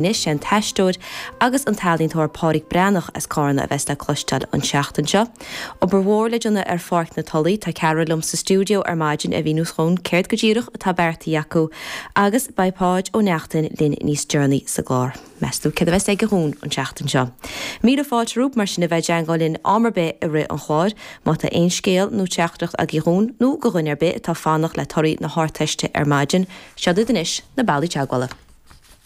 Anois, sé an t-aisteoir agus an t-ealaíontóir Pádraic Breathnach as Cárna a bheas le cloisteáil an tseachtain seo. Obair mhór le déanamh ar Pháirc na Tulaí, tá ceathrar liom sa stiúideo ar maidin a mhíneos dhúinn céard go díreach atá beartaithe acu agus beidh Páid Ó Neachtain linn níos deireanaí sa gclár. Meas tú céard a bheas aige dhúinn an tseachtain seo? Míle fáilte romhaibh, mar sin, a bheith ag teagmháil linn am ar bith i rith an chláir, má tá aon scéal nó teachtaireacht agaibh dhúinn, nó go dhuine ar bith atá ag fanacht le torthaí na hArdteiste ar maidin, seo iad anois na bealaí teagmhála.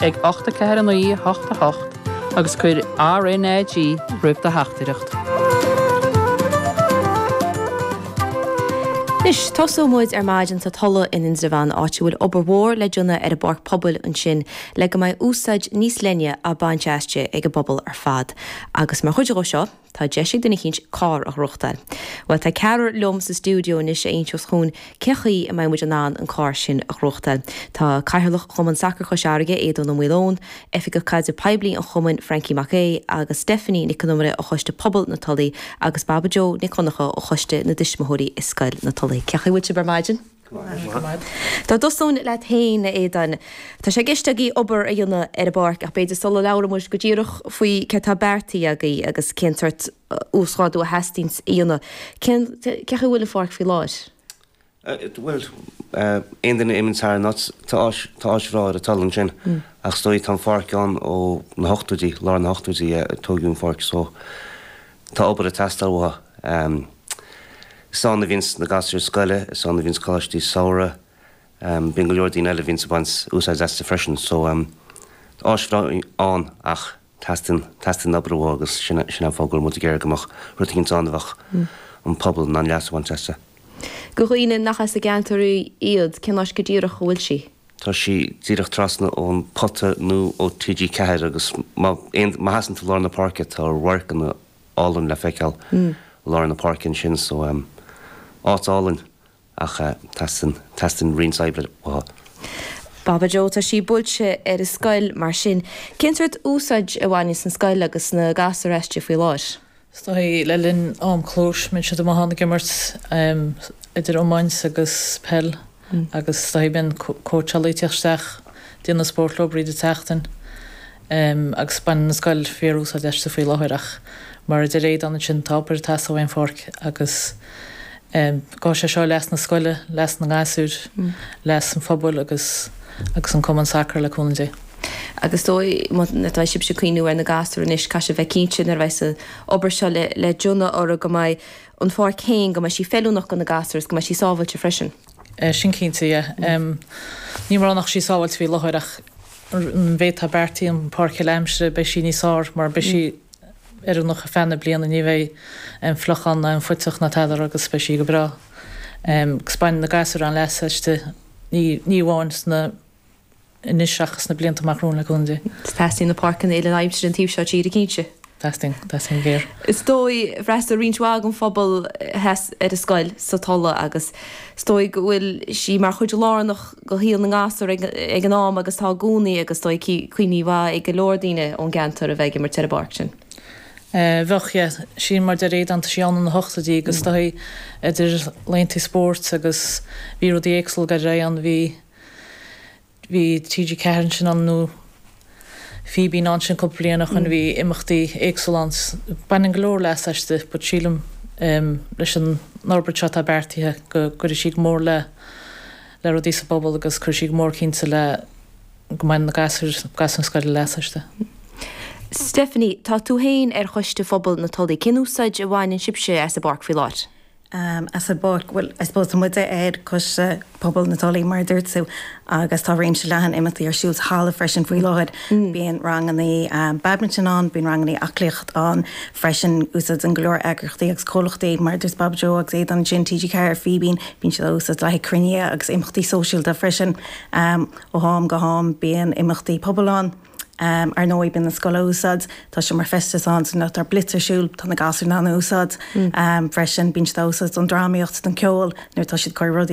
ag 8 4 9 8 8 agus cuir RNAG roimh do theachtaireacht. Anois, tosóidh muid ar maidin sa Tulaigh in Indreabhán áit a bhfuil obair mhór le déanamh ar an bpáirc pobail ansin le go mbeidh úsáid níos leithne á baint aisti ag an bpobal ar fad. Agus mar chuid dhó seo, Tá deis ag duine éicint carr a ghnóthachtáil. Bhuel, tá ceathrar liom sa stiúideo anois a inseos dhúinn cén chaoi a mbeidh muid in ann an carr sin a ghnóthachtáil. Tá Cathaoirleach Chumann Sacair Chois Fharraige, Aodán Ó Maoileoin, Oifigeach Caidrimh Poiblí an Chumainn, Frankie Mac Aoidh, agus Stephanie Nic Con Iomaire ó Choiste Pobail na Tulaí agus Baba Jo Nic Dhonnacha ó Choiste na dTuismitheoirí i Scoil na Tulaí. Cén chaoi a bhfuil sibh ar maidin? Dá dtosóinn leat féin, a Aodáin. Tá sé i gceist agaí obair a dhéanamh ar an bpáirc, ach b'fhéidir sula labhróidh muid go díreach faoi céard tá beartaithe agaí agus cén sórt uasghrádú a theastaíonn a dhéanamh, cén, cén chaoi a bhfuil an pháirc faoi láthair? Bhuel, aon duine a imíonn thar an áit, tá áis, tá áis bhreá ar an Tulaigh ansin, ach is dóigh tá an pháirc ann ó na hochtóidí, lár na hochtóidí a tógadh an pháirc so, Tá obair ag teastáil uaithi. Is ann a bhíonns na gasúir scoile, is ann a bhíonns coláistí samhraidh. Bíonn go leor daoine eile a bhíonns ag baint úsáid astu freisin. So, tá áis bhreá ann ach teastaíonn, teastaíonn obair uaithi agus sin é, sin é an fáth go bhfuil muid ag iarraidh go mbeadh rud éigint ann a bheadh an pobal in ann leas a bhaint astu. Do dhaoine nach as an gceantar iad, cén áit go díreach a bhfuil sí? tá sí díreach trasna ón Pota nó ó TG4 agus má sheasann tú lár na páirce tá amharc an-álainn le feiceáil i lár na páirce ansin so áit álainn ach teastaíonn roinnt oibre uaithi. Baba Jo, tá sí buailte ar an scoil mar sin cén sórt úsáid a bhaineanns an scoil agus na gasúir aisti faoi láthair? Is dóichí le linn am clóis, bíonns siad amuigh ann ag imirt idir iomáint agus peil agus is dóichí, bíonn cóitseálaithe ag tíocht isteach ag déanamh spóirt leo thríd an tseachtain agus baineann an scoil fíorúsáid aisti faoi láthair ach mar a deir Aodán ansin tá obair ag teastáil ón bpáirc agus gabhfaidh sé seo leas na scoile, leas na ngasúir, leas an phobail agus agus an cumann sacar le cúnamh Dé. Agus dóigh, má tá sibhse ag cuimhniú ar na gasúir anois, caithfidh sibh a bheith cinnte, nuair a bheidh an obair seo le déanamh orthu, go mbeidh an pháirc féin, go mbeidh sí feiliúnach do na gasúir agus go mbeidh sí sábhailte freisin. Sin cinnte, yeah. Ní móide nach bhfuil sí sábhailte faoi láthair ach an méid atá beartaithe an pháirc uile-aimsire, beidh sí níos fearr mar beidh sí oiriúnach ar feadh na bliana, ní bheidh an fliuchán ná an puiteach ná tada agus beidh sí go breá. Agus bainfidh na gasúir an-leas aisti, ní amháin sna. anois ach sna blianta amach romhainn le cúnamh Dé. Teastaíonn na páirceanna uile-aimsire an taobh seo tíre cinnte. Teastaíonn. Teastaíonn go géar. Is dóigh, d'fhreastail roinnt mhaith den phobal theas ar an scoil sa Tulla agus is dóigh go bhfuil sí mar chuid lárnach de shaol na ngasúr ag an am agus tá i gcónaí agus is dóigh cuimhní maithe ag go leor daoine ón gceantar a bheith ag imirt ar an bpáirc sin. Bheadh, yeah. Sin mar déarfainn, déanadh sí ann sna hochtóidí agus is dóigh idir laethanta spóirt agus bhí rudaí éagsúla ag éirí ann, bhí, Bhí TG4 ansin ann nó Fíbín ansin cúpla bliain ó shoin, bhí imeachtaí éagsúla ann. Baineann go leor leas aisti but sílim leis an fhorbairt seo atá beartaithe go gcuirfidh sí go mór le le rudaí sa bpobal agus cuirfidh sí go mór cinnte le go mbainfidh na gasúir, gasúir na scoile leas aisti. Stephanie, tá tú féin ar Choiste Phobal na Tulaí. Cén úsáid a bhaineann sibhse as an bpáirc faoi láthair? um, as an bpáirc, well, I suppose tá muid ar Choiste Pobail na Tulaí mar a dúirt tú agus tá réimse leathan imeachtaí ar siúl sa halla freisin faoi láthair. Bíonn ranganna um, badminton ann, bíonn ranganna aclaíocht ann freisin, úsáideann go leor eagraíochtaí agus comhlachtaí mar a dúirt Baba Joe agus Aodán ansin, TG4, Fíbín, bíonn siad á úsáid le haghaidh cruinnithe agus imeachtaí sóisialta freisin. Um, ó ham go ham bíonn imeachtaí pobail ann. Ar ndóigh, bíonn an scoil á úsáid, tá sé mar seomra feistis ansin má tá blitz ar siúl, tá na gasúir in ann a úsáid freisin, bíonn siad á úsáid don drámaíocht, don ceol, nuair atá siad ag cur rudaí ar.